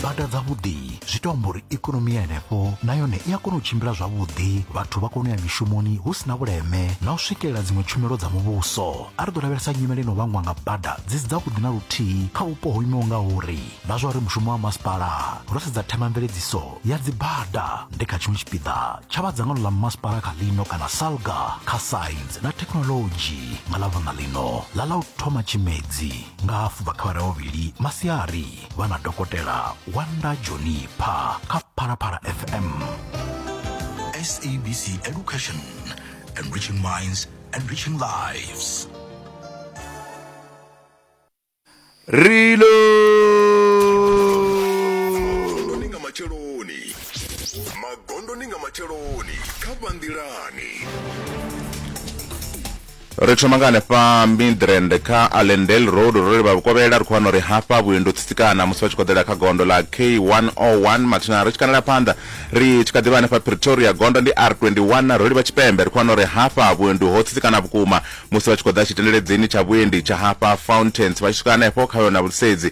bada dzavhuḓi zwi to amba uri ikonomi ya henefho na yone i a kona u tshimbila zwavhuḓi vhathu vha kona u ya mishumoni hu si na vhuleme na u swikelela dziṅwe tshumelo dza muvhuso a ri ḓo lavhelesa nyimele ino vhangwa nga bada dzi si dzavhuḓi na luthihi kha vhupo ho imaho nga uri na zwa uri mushumo wa masipala ro sedza themamveledziso ya dzibada ndi kha tshiṅwe tshipiḓa tsha vha dzangano ḽa masipala kha ḽino kana salga kha science na thekhinolodzhi nga ḽa vunḓa ḽino ḽa ḽa u thoma tshimedzi nga hafu vha kha vhavhili masiari vha na dokotela wanda joni pha kha phalaphala fm sabc education enriching minds enriching lives rilo magondoni nga matsheloni magondoni nga matsheloni kha vhanḓilani Ri thoma nga hanefha Midrand kha Allendale Road ro livha vhukovhela ri khou wana uri hafha vhuendi u tsitsikana musi vha tshi khoḓela kha gondo ḽa K101 mathina ri tshi kanela phanḓa ri tshi kha ḓivha hanefha Pretoria gondo ndi R21 ro livha tshipembe ri khou wana uri hafha vhuendi ho tsitsikana vhukuma musi vha tshi khoḓa tshitendeledzini tsha vhuendi tsha hafha Fountains vha tshi swika hanefho kha yona vhulisedzi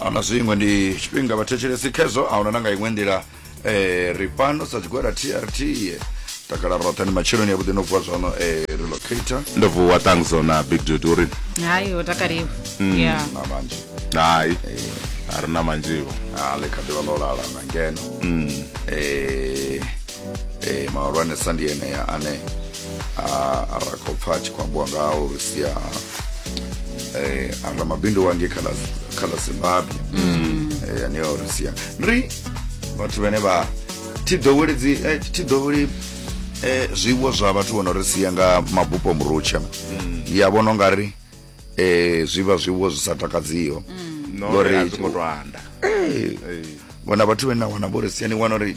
ahuna zwiṅwe ndi tshifhinga vhathetshelesi khezwo ahuna na nga iṅwe nḓila um ri fhano sa tshigwada trt takala roṱhe ndi matsheloni ya vhuḓi no vuwa zwano um relocator ndo vuwa tangzo na big dude uri hayi ho takaliwa ya na manzhi hai a ri na manzhiwo a ḽi kha ḓivha ḽo lala na ngeno um e, mahulwanesa ndi enea ane a ra khou pfa a tshi khou ambiwa ngao sia eh, anga mabindu wange khala khala zimbabwe mm. eh, ane a ri sia ri vhathu vhane vha thi ḓowedzi eh, thi ḓoweli eh, zwiwo zwa vhathu vho no ri sia nga mabupo murutsha mm. ya vhono nga ri eh, zwi vha zwiwo zwi sa takadziho mm. no, ngori a zwi khou to anda vhona vhathu vhane na wana vho ri sia ni wana uri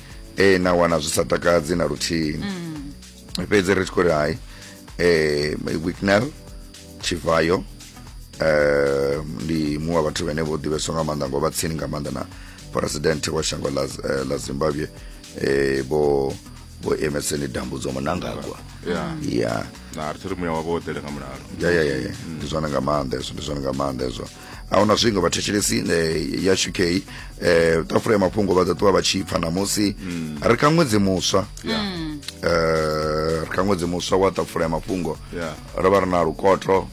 e, na wana zwi sa takadzi na luthihi mm. fhedzi ri tshi khou ri hai e, wicknel tshivayo eh ndi muṅwe wa vhathu vhene vho ḓivheswa nga maanḓa ngo vha tsini nga maanḓa na president wa shango la, eh, la zimbabwe eh bo bo emeseni dambudzo munangagwa ya yeah. na ri thiri muya wavho ḓele nga mulalo ya ya ya ya ndi zwana nga maanḓa ezwo ndi zwana nga maanḓa ezwo ahuna zwingo vhathetshelesi eh, ya uk eh, ṱafula ya mafhungo vha ḓo ṱuwa vha tshi pfa namusi mm. ri kha ṅwedzi muswa mm. eh, ri kha ṅwedzi muswa wa ṱafula ya mafhungo ro vha ri na lukoto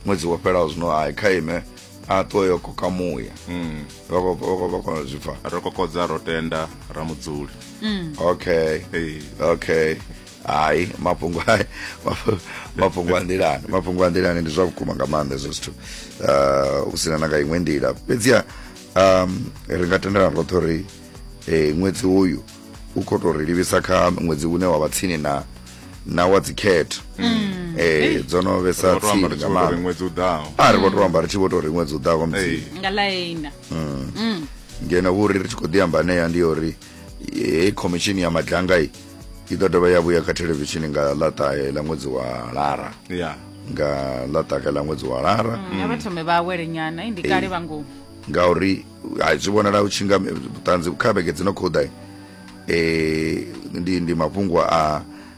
ṅwedzi wo fhelaho zwino hai kha ime a ṱuwe yo koka muya mm. vha kona zwi pfa ro kokodza ro tenda ra mudzuli okay okay hayi mafhungo hayi mafhu- mafhungo a nḓilani mafhungo a nḓilani ndi zwa vhukuma nga maanḓa hezwo zwithu uh, hu sina na nga iṅwe nḓila fhedziha um, ri nga tendelana roṱhe uri eh, ṅwedzi uyu u khou tou ri livhisa kha ṅwedzi une wa vha tsini na na wa dzikhetho eh, dzo no vhesa Ro to amba tsini ri nga tshi vho tou ri maanḓa ṅwedzi u ḓaho a ri vho tou amba ri tshi vho tou ri ṅwedzi u ḓaho Ee. musi nga ḽaina ngeno vhuri ri tshi khou ḓi amba anea ndi ya uri hei khomishini ya madlanga i i ḓo dovha ya vhuya kha thelevishini nga ḽa ṱahe ḽa ṅwedzi wa lara ya nga ḽa ṱahe ḽa ṅwedzi wa lara nga vha thome vha awele nyana i ndi kale vha ngomu ngauri hai zwi vhonala u tshinga vhuṱanzi kha vhege dzi no khou ḓa eh, ndi ndi mafhungo a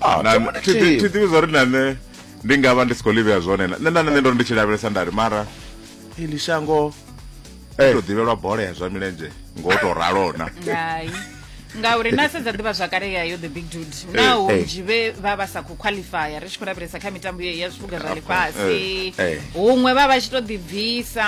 Ah, Na- come on, thi- thi- thi Chief. ḓivhi zwa uri na nṋe ndi nga vha ndi si khou livhea zwone na- nṋe na nṋe ndo ri ndi tshi lavhelesa ndari mara ili shango Eh. to ḓivhelwa bola ya zwa milenzhe ngo to ralona hai ngauri na sedza ḓivha zwakale ya yo the big dude naho eh. nzhi vhe vha vha sa khou qualifya ri tshi khou lavhelesa kha mitambo ye ya zwipuga zwa lifhasi eh, eh. huṅwe vha vha tshi to ḓibvisa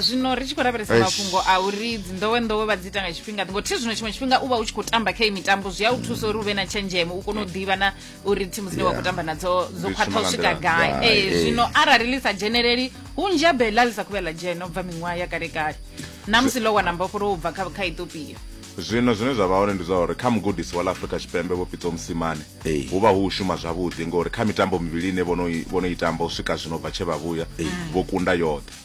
zwino ri tshi khou lavhelesa Eish. mafhungo a uri dzinḓowenḓowe vha dzi ita nga tshifhinga ngo thi zwino tshiṅwe tshifhinga u vha u tshi khou tamba kha iyi mitambo zwi a u thusa uri u vhe na tshenzhemo u kone u ḓivha na uri thimu dzine wa khou tamba nadzo dzo khwaṱha u swika gai ee zwino arali ḽi sa dzheneleli hunzhi ha bela ḽi sa khuvhe ḽa dzhena u bva miṅwaha ya kale kale na musi ḽo wana mbofholo u bva kha kha ethiopia zwino zwine zwa vha hone ndi zwa uri kha mugudisi wa ḽa afrika tshipembe vho pitso musimane hu vha hu u shuma zwavhuḓi ngori kha mitambo mivhili ine vhono i tamba u swika zwino bva tshe vha vhuya vho kunda yoṱhe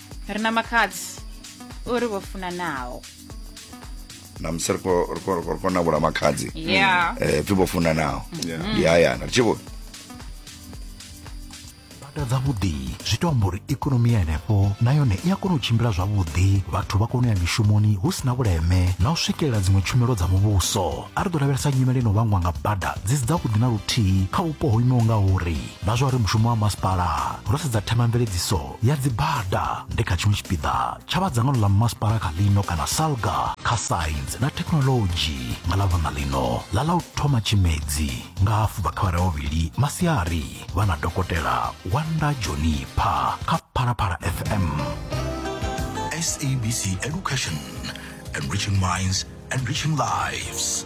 ri na makhadzi uri vho funanaho namusi ri khou navhula makhadzi ya um pfi vho funanaho ndi hayana ri tshi vho bada dzavhuḓi zwi to amba uri ikonomi ya henefho na yone i a kona u tshimbila zwavhuḓi vhathu vha kona u ya mishumoni hu si na vhuleme na u swikelela dziṅwe tshumelo dza muvhuso a ri ḓo lavhelesa nyimele ino vhangwa nga bada dzi si dzavhuḓi na luthihi kha vhupo ho imaho nga uri na zwa uri mushumo wa masipala ro sedza themamveledziso ya dzibada ndi kha tshiṅwe tshipiḓa tsha vha dzangano ḽa masipala kha ḽino kana salga kha saintsi na thekhinoḽodzhi nga ḽa vhana ḽino ḽa ḽa u thoma tshimedzi nga hafu bva kha vhara vhavhili masiari vha na dokotela wanda jonipha kha phalaphala fm SABC Education, enriching minds, enriching lives.